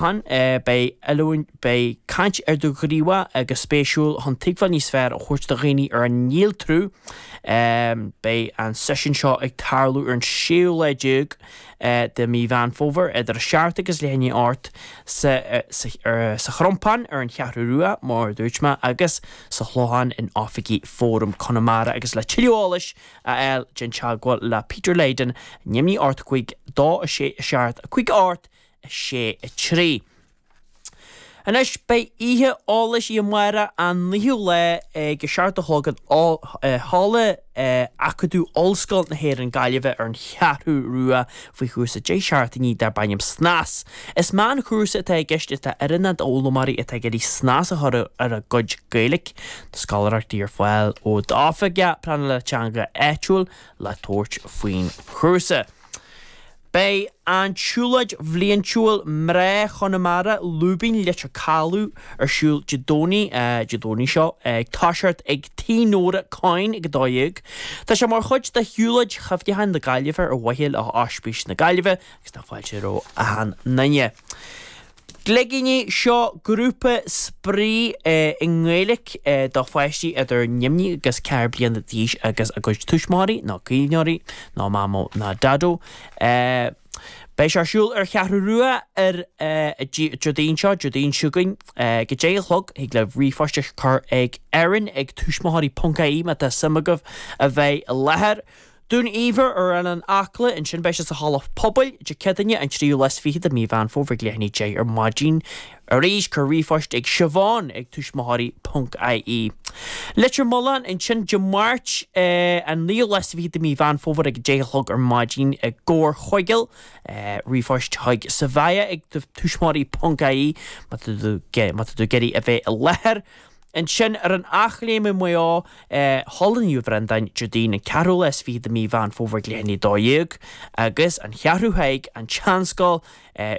Ann é, beidh oiliúint, beidh caint idirghníomhach agus spéisiúil chun tuigbheáil níos fearr a thabhairt do dhaoine ar an néaltrú. Beidh an seisiún seo ag tarlú ar an séú lá déag de mí Mheán Fómhair, idir a seacht agus leath i ndiaidh a hocht, sa Chrompán ar an Cheathrú Rua, mar a dúirt mé, agus sa Chlochán in oifigí Fóram Chonamara agus le tuilleadh eolais a fháil déan teagmháil le Peter Leyden, ar neamhní a hocht a cúig, dó a sé a seacht a cúig a hocht, 6 3. Anois beidh oíche eolais amárach an 9ú lá ag a seacht a chlog in Halla Acadamh Ollscoil na hÉireann Gaillimhe ar an Cheathrú Rua faoi chúrsa 10 seachtainí darb ainm Snas. Is meánchúrsa atá i gceist atá oiriúnach d'fhoghlaimeoirí atá ag iarraidh snas a chur ar a gcuid Gaeilic. Tá scoláireachtaí ar fáil ó d'Oifig Pleanála Teanga áitiúil le tabhairt faoin chúrsa. Beidh an tsiúlóid bhliaintiúil Mná Chonamara, Lúibín Leitir Calaidh ar siúl Dé Domhnaigh, Dé Domhnaigh seo, ag toiseacht ag Tí Nóra Coyne ag 12:00. Tá sé mar chuid de shiúlóid chuimhneacháin na Gaillimhe ar mhaithe le hOspís na Gaillimhe agus tá fáilte roimh achan nduine. Gligíní seo grúpa spraoi i nGaeilge do pháistí idir neamhní agus ceathair bliana d'aois agus a gcuid tuismitheoirí nó caomhnóirí nó mamó ná daideo. Beidh sé ar siúl ar Cheathrú Rua ar Déardaoin seo, Déardaoin seo againn, ag a deich a chlog. Thig libh ríomhphost a chur ag Erin ag tuismitheoirí ponc ie má tá suim agaibh a bheith i láthair. Dún Ibhir ar Oileán Acla, ansin beidh sé sa halla pobail, Dé Céadaoine an 23ú lá de mhí Mheán Fómhair ag leath i ndiaidh 10 ar maidin. Arís, cuir ríomhphost ag Siobhán ag tuismitheoirí ponc ie. Leitir Mealláin, ansin Dé Máirt an 29ú lá de mhí Mheán Fómhair ag 10 a chlog ar maidin i gComhar Chuigéal, ríomhphost chuig Savaya ag tuismitheoirí ponc ie má tá tú ag iarraidh a bheith i láthair. Ansin, ar an Eachléim i Maigh Eo, Halla Naomh Bhreandáin, Déardaoin an 24ú lá de mhí Mheán Fómhair ag leath i ndiaidh 12, agus An Cheathrú Thaidhg, An tSeanscoil,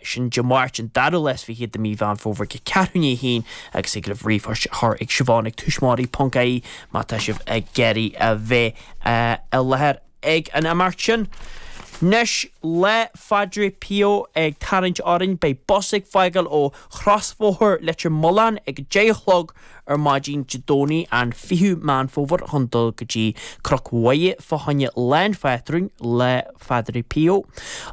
sin Dé Máirt, an 22ú lá de mhí Mheán Fómhair ag ceathrú i ndiaidh a haon agus thig libh ríomhphost a chur ag Siobhán ag tuismitheoirí ponc ie má tá sibh ag iarraidh a bheith i láthair. ag an imeacht sin. Nois le Phadre Pio ag tarraingt orainn, beidh bus ag fágáil ó chrosbhóthar Leitir Mealláin ag a deich a chlog ar maidin Dé Domhnaigh an 20ú Meán Fómhair chun dul go dtí Cnoc Mhuire fá choinne Lá an Phátrúin le Phadre Pio.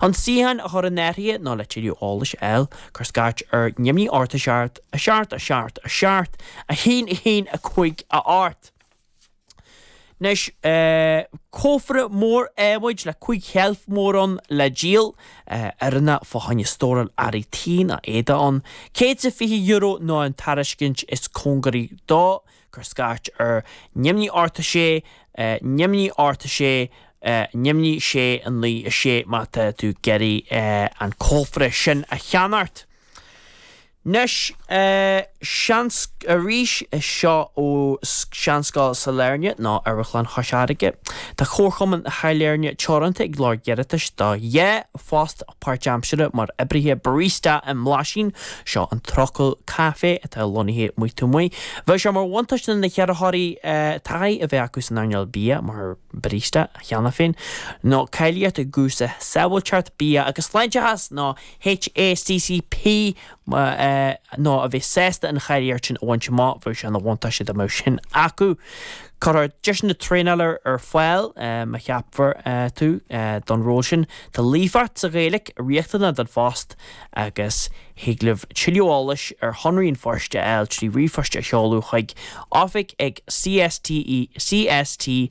Chun suíochán a chur in áirithe nó le tuilleadh eolais a fháil, cuir scairt ar 0, 8, 7, 7, 7, 7, 1, 1, 5, 8! Anois, cófra mór adhmaid le cúig sheilf mhór ann le díol, a rinneadh fá choinne stóráil earraí tí nó éadaí ann, €120 nó an tairiscint is cóngaraí dó, cuir scairt ar neamhní 8 6 neamhní 8 6 neamhní 6 9 6 má tá tú ag iarraidh an cófra sin a cheannacht. Anois, seans arís seo ó Sheanscoil Sailearna, nó Amharclann Chois Fharraige. Tá Comharchumann Shailearna Teoranta ag lorg iarratais do dhá phost páirtaimseartha mar oibrithe barista i mBlaisín, seo an trucail caife atá lonnaithe amuigh taobh amuigh. Bheadh sé mar bhuntáiste do na hiarrthóirí taithí a bheith acu san earnáil bia mar barista cheana féin, nó cáilíocht i gcúrsa Sábháilteacht Bia agus Sláinteachas nó HACCP nó a bheith sásta an cháilíocht sin a bhaint amach. Bheadh sé ina bhuntáiste dá mbeadh sin acu. Cuirfear deiseanna traenála ar fáil, má cheapfar tú don ról sin. Tá líofacht sa Ghaeilge riachtanach don phost agus thig libh tuilleadh eolais ar shonraí an phoist a fháil trí ríomhphost a sheoladh chuig, oifig ag CSTE, cst.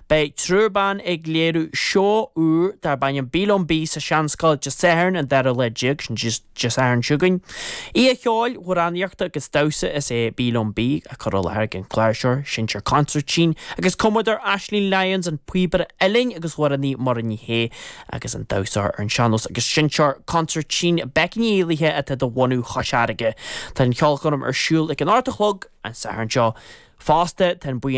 Beidh triúr ban ag léiriú seó úr darb ainm Bí Liom Bí sa Seanscoil Dé Sathairn an 2ú lá déag, sin Dé Sathairn seo chugainn. Oíche cheoil, amhránaíochta agus damhsa is ea Bí Liom Bí, á cur i láthair ag an gcláirseoir, seinnteoir consairtín agus cumadóir Aisling Lyons, an píobaire uilleann agus amhránaí Muireann Ní Shé, agus an damhsóir ar an sean-nós agus seinnteoir consairtín Becky Ní Éallaithe atá de bhunadh Chois Fharraige. Tá an cheolchoirm ar siúl ag an ocht a chlog an Satharn seo. Fosta, tá an buíon